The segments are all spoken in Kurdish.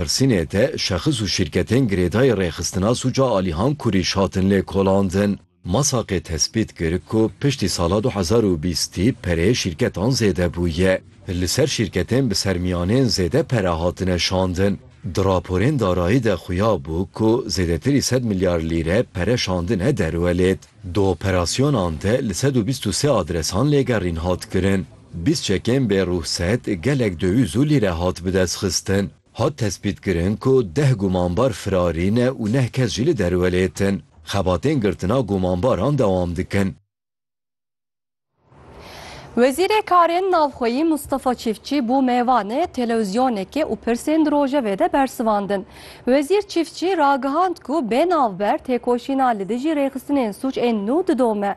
Pirsînê te şexis û şîrketên girêdayî rêxistina sûca Alîhan Kurîş hatin lêkolandin. Masakê tespît kir ku piştî sala du hezar û bîstî pereyê şîrketan zêde bûye. Li ser şîrketên bi sermiyanên zêde pere hatine şandin. Di raporên darayî de xuya bû ku zêdetirî sed milyar lîre pere şandine derwelêt. Di operasyonan de li sed û bîst û sê adresan lêgerîn hat kirin. Bîst çekên bê ruhset gelek döwîz û lîre hat bidestxistin. Hat tespîtkirin ku deh gumanbar firarî ne û neh kes jî li derwelê tin. Xebatên girtina gumanbaran dewam dikin. Wezîrê Karên Navxweyî Mustafa Çîftçî bû mêvanê telewîzyonekê û pirsên di rojevê de bersivandin. Wezîr Çîftçî ragihand ku bê navber têkoşîna li dijî rêxistinên sûc ên nû didome.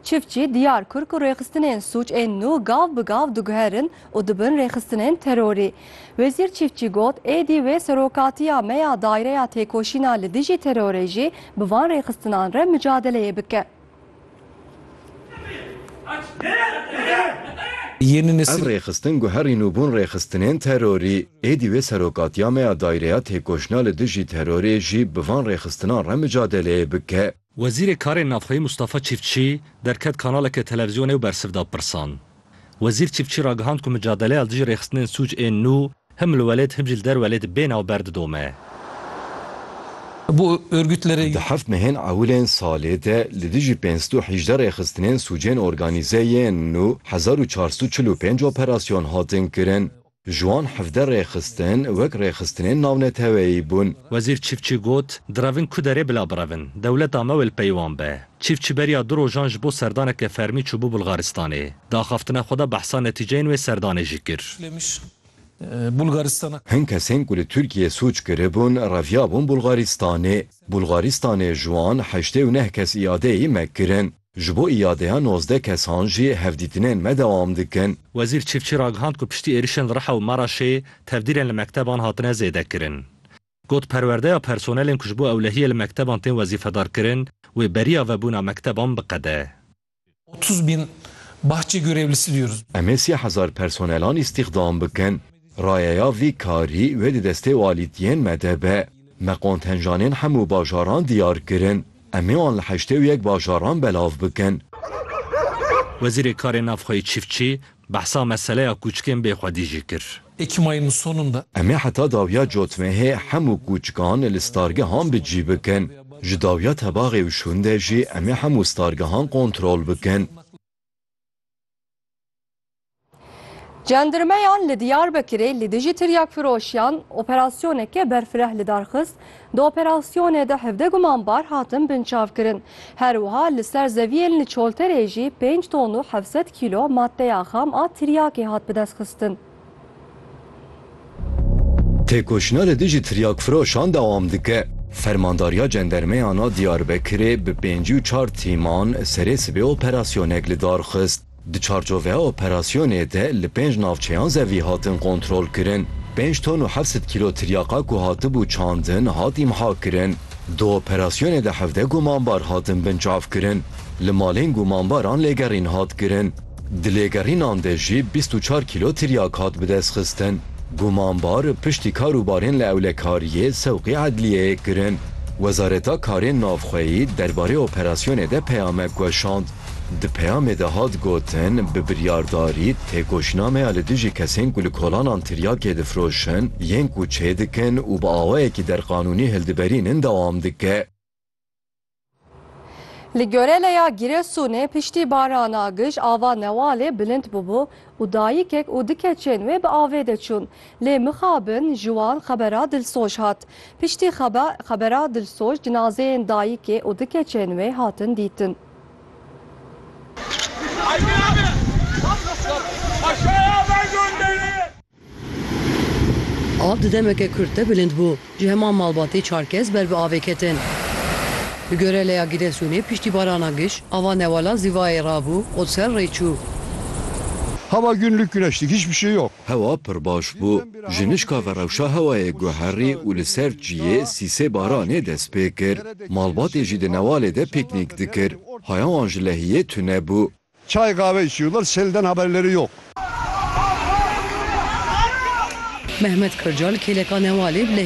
Çiftçî diyar kir ku rêxistinên sûc ên nû gav bi gav diguherin û dibin rêxistinên terorî. Wezîr Çiftçî got, Êdî wê serokatiya me ya Daireya Têkoşîna li dijî Terorê jî bi van rêxistinan re micadeleyê bike. Ev rêxistin guherîn û bûn rêxistinên terorî. Êdî wê serokatiya me ya Daireya Têkoşîna li dijî Terorê jî bi van rêxistinan re micadeleyê bike. Wezîrê Karên Navxweyî Mustafa Çîftçî derket kanaleke televîzyonê û bersiv da pirsan. Wezîr Çîftçî ragihand ku micadeleya li dijî rêxistinên sûc ên nû him li welêt him jî li der welêt bê navber didome. Di heft mehên ewilên salê de li dijî pênc sed û hîjdeh rêxistinên sûcên organîze yên nû hezar û çar sed û çil û pênc operasyon hatin kirin. Ji wan hevdeh rêxistin wek rêxistinên navneteweyî bûn. Wezîr Çîfçî got, Direvin ku derê bila birevin. Dewleta me wêl pey wan be. Çîfçî beriya du rojan ji bo serdaneke fermî çûbû Bulgaristanê. Di axaftina xwe de behsa netîceyên wê serdanê jî kir. Hin kesên ku li Tirkiyeyê sûc kiribûn reviyabûn Bulgaristanê. Bulgaristanê ji wan heştê û neh kes îadeyî me kirin. Ji bo îadeya nozdeh kesan jî hevdîtinên me dewam dikin. Wezîr Çîfçî ragihand ku piştî êrişên li Riha û Meraşê tevdîrên li mekteban hatine zêdekirin. Got perwerdeya personelên ku ji bo ewlehiyê li mekteban tên wezîfedarkirin wê beriya vebûna mekteban biqede. Otuz bin bahçe görevlisi diyoruz. Em ê sî hezar personelan îstîxdam bikin. Rayeya vî karî wê di destê walîtiyên me de be. Me qontenjanên hemû bajaran diyar kirin. Em ê wan li heştê û yek bajaran belav bikin. Wezîrê Karên Navxweyî Çîfçî behsa meseleya kûçikên bê xwedî jî kir. Em ê heta dawiya cotmehê hemû kûçikan li stargehan bi cî bikin. Ji dawiya tebaxê û şûn de jî em ê hemû stargehan kontrol bikin. Cendirmeyan li Diyarbekirê li dijî tiryakfiroşiyan operasyoneke berfireh li dar xist, di operasyonê de hevdeh gumanbar hatin binçavkirin. Her wiha li ser zeviyên li Çolterê jî pênc ton û heft sed kîlo maddeya xam a tiryakê hat bidestxistin. Têkoşîna li dijî tiryakfiroşan dewam dike. Fermandariya Cendermeyan a Diyarbekirê bi pêncî û çar tîman serê sibê operasyonek li dar xist. Di çarçoveya operasyonê de li pênc navçeyan zevî hatin kontrolkirin. Pênc ton û heft sed kîlo tiryaqa ku hatibû çandin hat îmhakirin. Di operasyonê de hevdeh gumanbar hatin binçavkirin. Li malên gumanbaran lêgerîn hat kirin. Di lêgerînan de jî bîst û çar kîlo tiryak hat bidestxistin. Gumanbar piştî kar û barên li ewlekariyê sewqî edliyeyê kirin. Wezareta Karên Navxweyî derbarê operasyonê de peyamek weşand. Di peyamê de hat gotin, bi biryardarî têkoşînameya li dijî kesên ku li kolanan tiryakê difiroşin, yên ku çêdikin û bi awayekî derqanûnî hildiberînin dewam dike. Li Göreleya Giresunê piştî barana gij ava Newalê bilind bûbû û dayikek û di keçên wê bi avê de çûn. Lê mixabin ji wan xebera dilsoj hat. Piştî xebera dilsoj cinazeyên dayikê û di keçên wê hatin dîtin. Av di demeke kurt de bilind bû. Ji heman malbatê çar kes ber bi avê ketin. Bi Göreleya Giresunê piştî barana giş, ava newala Zivayê rabû û ser rê çû. Hava günlük güneşlik hiçbir şey yok. Hewa pir baş bû. Ji nişka ve rewşa hewayê guherî û li ser çiyê sîsê baranê dest pê kir. Malbatê jî di newalê de pîknîk dikir. Haya wan ji lehiyê tune bû. Çay qave içiyorlar, selden haberleri yok. Mehmet Kırcal kêleka newalê bi lehiyê